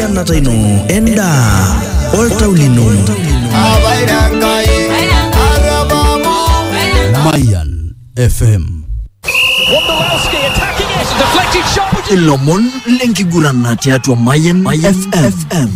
enkiteng'enata ino endaa oltau lino Mayan FM. Ilomon lenkigurana tiatua Mayan FM.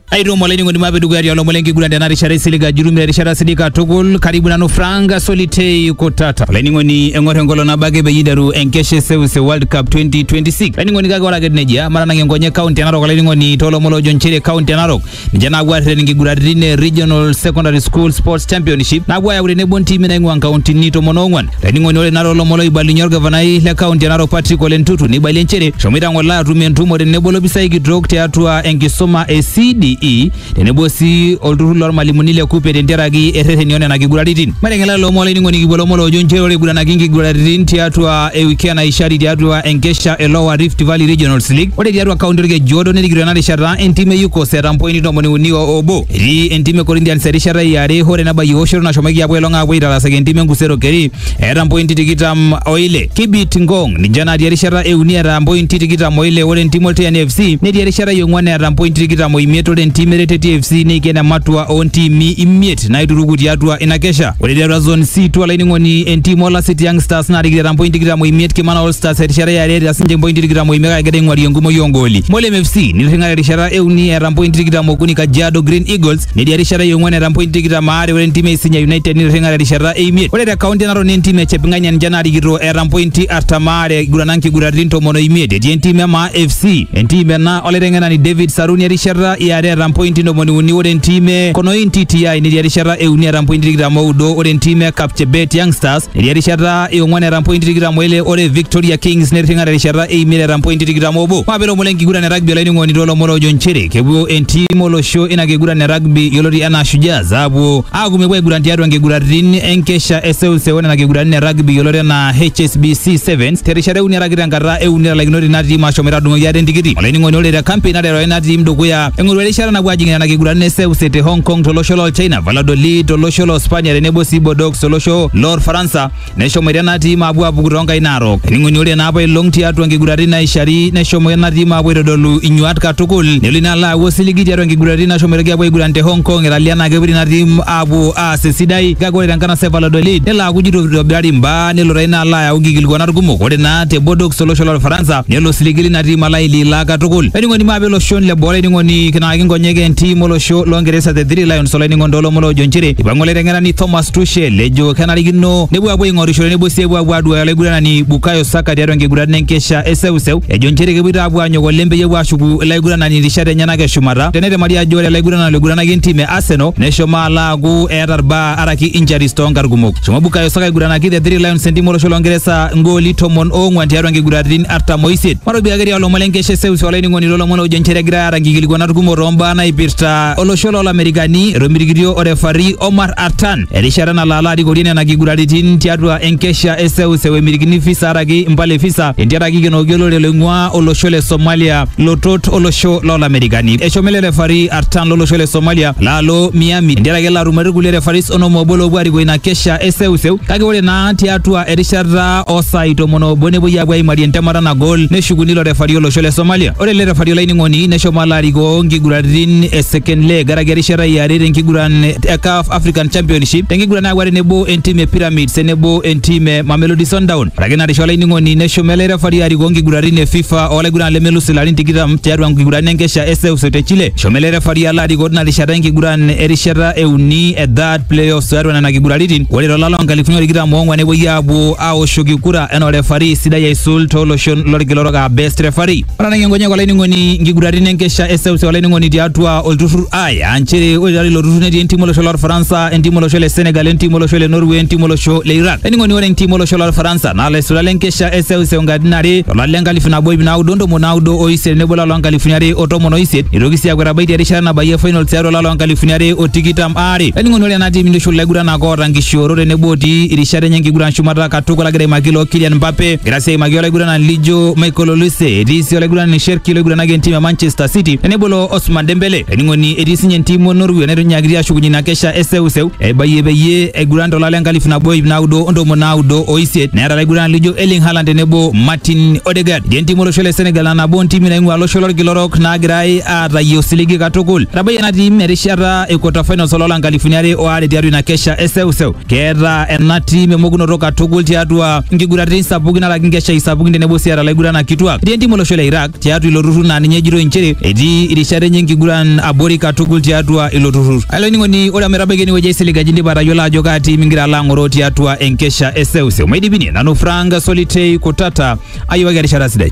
Aitomo olainining'oni mape dukuya tiolomon lenkiguran tena rishata isilig ajurumi te rishata sidai katukul karibu nanu Frank Solitei Kutata. Olainining'oni eng'or enkolong nabo ake peyie iteru enkesha e Seuseu World Cup 2026. Olainining'oni kake ore ake etiu nejia matanang enkonyek kaunti e Narok olainining'oni toolomon loojo nchere kaunti e Narok ninche naapuo aarreten inkiguraritin e Regional Secondary School Sports Championship naapuo ayau tenebo ntimi naing'ua nkauntini tomon oong'uan Laining'oni ore nara olomon loibalunye olgavanai le kaunti e Narok Patrick Ole Ntutu neibalie nchere eshomoita ng'ole atum entumo tenebo lopisai kitok tiatua enkisuma e CDE tenebo sii olturrur lormalimuni le KUPPE tentiaraki errereni o nena kiguraritin. Maiteng'ela lelo omon olainining'oni kipuo lomon loojo nchere ore eiguranaki inkiguraritin tiatua ewiki e Naishari tiatua enkesha e Lower Rift Valley Regionals League ore tiatua kaunti Olkejuodo nerikito ena rishata entim e UCOS eeta mpointi tomoni uni o obo. Etii entim e Corinthians erishata e are hore nabayie oshoto nashomoki apuo ailong apuo aitarasaki entim e Nkusero Keri eeta mpointi tikitam o ile. Kibit Ngong ninche natii erishata e uni eeta mpointi tikitam o ile ore entim Olteani FC netii erishata e ong'uan eeta mpointi tikitam o imiet ore entim Ereteti FC neiken ematua oo ntiimi imiet naituruku tiatua ina kesha. Ore tiatua Zone C2 olainining'oni entim Olasiti Young Stars naarikito eeta mpointi tikitam o imiet Kimana All Stars erishata e are eeta sininche mpointi tikitam o imiet kake egira aing'uari enkumoi oo ngooli. Molem FC nitirring'ate erishata euni eeta mpointi tikitam okuni Kajiado Green Eagles netii erishata e ong'uan eeta mpointi tikitam aare ore entim e Isinya United nitirring'ate erishata e imiet ore te kaunti e Narok naa entim e Cheping'ania ninche naarikito eeta mpointi artam aare igurana nkiguraritin tomon o imiet etii entim e Maa FC entim ena olaiteng'enani David Saruni erishata e are eeta mpointi ntomoni uni ore entim e Konoin TTI netii erishata e uni eeta mpointi tikitam oudo ore entim e Kapchebet Youngsters Netii erishata e ong'uan eeta mpointi tikitam o ile ore Victoria Kings netirring'a terishata e imiet eeta mpointi tikitam obo. Maape lomon le nkiguran e rugby olainining'oni too lomon oojo nchere kepuo entim olosho ina kiguran e rugby yioloti anaa Shujaas aapuo aaku mepuo aiguran tiatua nkiguratin enkesha e seuseu o nena kiguratin e rugby yioloti anaa HSBC Sevens terishata e uni araki tenkata e uni etalaikinote ina tim aashomoita aadung'oki ate entikiti. Olainining'oni ore te kampein naterewa ina tim dukuya eng'oru erishata napuo aajing'ie nena kiguratin e seuse te Hong Kong to losho loo China, Valladolid to losho loo Spania tenebo sii Bordeaux solosho lor faransa neshomo ira ena tiim apuo apuku toonkai naarok ening'oni ore naapa ilong tiatua nkiguratin naishari neshomo ena tiim apuo aitodolu inyuat katukul nelo ina alo aaku osiligi tiatua nkiguratin nashomoitoki apuo aiguran te hong kong italia naa kepuo ina tiim apuo aas esidai kake ore tenkanasa e valladolid nelo aaku jito itobirari imbaa nelo taa ina alo ayau nkikilikuanat kumok ore naa te bodox olosho lor faransa nelo osiligi lina tiim alo aililaa katukul ening'oni maape iloshon le boo olainining'oni kinaaki nkonyek entiim olosho longeresa the three lions Neipirta olainining'oni toolomon oojo nchere eipang'u olaiteng'enani Thomas Tuchel ejo kenarikino nepuo apuo aing'orishore nebo sii epuo apuo aduaya olaiguranani Bukayo Saka tiatua enkiguran enkesha e seuseu ejo nchere kepuoito apuo aanyok oleng peyie epuo aashuku ilaiguranani rishat enyenak e shumata tenetemari ajo ore olaiguranani loiguranaki entim e Arsenal neshomo alo aaku eeta irbaa araki injuries toonkarn kumok. Eshomo Bukayo Saka aiguranaki the Three Lions entim olosho loo Ngeresa igooli tomon oong'wan tiatua nkiguraritin artam oisiet. Matopika ake tialo ilomon le nkesha e seuseu olainining'oni toolomon oojo nchere egirai aata nkikilikuanat kumok toombaa naipirta olosho loo Lamerikani etomitikitio orefari Omar Artan erishata nalo alo arikorie nena kiguraritin tiatua enkesha e seuseu emirikini visa araki impala e visa entiaraki ikenoki olorere loing'uaa olosho le Somalia lotot olosho loo Lamerikani. Eshomo ele refari Artan lolosho le Somalia laalo Miami entiaraki elo atumore irkulie refaris onom oobo loopuo arikoo ina kesha e seuseu kake ore naa tiatua erishata osai tomon obo nepuoi aapuo aimarie entemata nagol neshukuni ilo refari olosho le Somalia. Ore ele refari olainining'oni neshomo alo arikoo nkiguraritin e second leg karaki erishata e are tenkiguran e CAF African Championship tenkiguran naapuo tenebo entim e Pyramids tenebo entim e Mamelodi Sundowns. Ore ake ina rishata olainining'oni neshomo ele refari arikoo nkiguraritin e FIFA olaiguran lemelus ilarin tikitam tiatua nkiguraritin enkesha e seuseu te Chile. Eshomo ele refari alo arikoo tina rishata enkiguran erishata e uni e third playoff tiatua nena kiguraritin ore to lala onkalifuni tikitam oong'wan nepuoi aapuo aawoshoki kura enaa orefari sidai aisul tooloshon lorkila orok aa best referee. Otanang'ie nkonyek olainining'oni nkiguraritin enkesha e seuseu olainining'oni tiatua olturrur I aa nchere ore tiatua ilo turrur netii entim olosho lorfaransa, entim olosho le Senegal, entim olosho le Norway, entim olosho le Iraq. Olainining'oni ore entim olosho lorfaransa naa ilaisulak le nkesha e seuseu nkatitin are to lari le nkalifu nabo iip naudo o ntomoni naudo o isiet tenebo olari loo nkalifuni are o tomon o isiet neitoki sii aaku etabaitie erishata nabayie finals tiatua olari loo nkalifuni are o tikitam aare. are. Olainining'oni ore enatii mintushul ilaiguranak oota nkishoorot tenebo otii irishat enye enkiguran shumata katukul agira aimaki ilo Kylian Mbappe, egira sii aimaki olaiguranani lijo Michael Olise, etii sii olaiguranani Sherki loiguranaki entim e Manchester City tenebo ilo Osman Dembele. Olainining'oni etii sinye entim o Norway netonyakitia ashukunye ina kesha e seuseu eibayie peyie eiguran to lari le nkalifu nabo iip naudo o ntomoni naudo o isiet neeta ilaiguranani lijo Erling Haaland tenebo Martin Odegaard. Etii entim olosho le Senegal aa nabo o ntimi naing'ua olosho lolkila orok naagirai aatayie osiligi katukul. Etabayie ena tim erishata e quarter finals oloo la nkalifuni are o are tiatua ina kesha e seuseu. Keeta ena tim emokunoto katukul tiatua nkiguraritin sapukin alak nkeshai sapukin tenebo sii eeta laiguranak kituak. Etii entim olosho le Iraq tiatua ilo turrur naa ninye ejitoi nchere etii irishat enye enkiguran abori katukul tiatua ilo turrur. Olainining'oni ore ometabaiki enewueji aisilig ajo indipa atayiolo ajo kaa tim ingira alo ang'oroo tiatua enkesha e seuseu. Maidipini nanu Frank Solitei Kutata ayiwaki erishata sidai.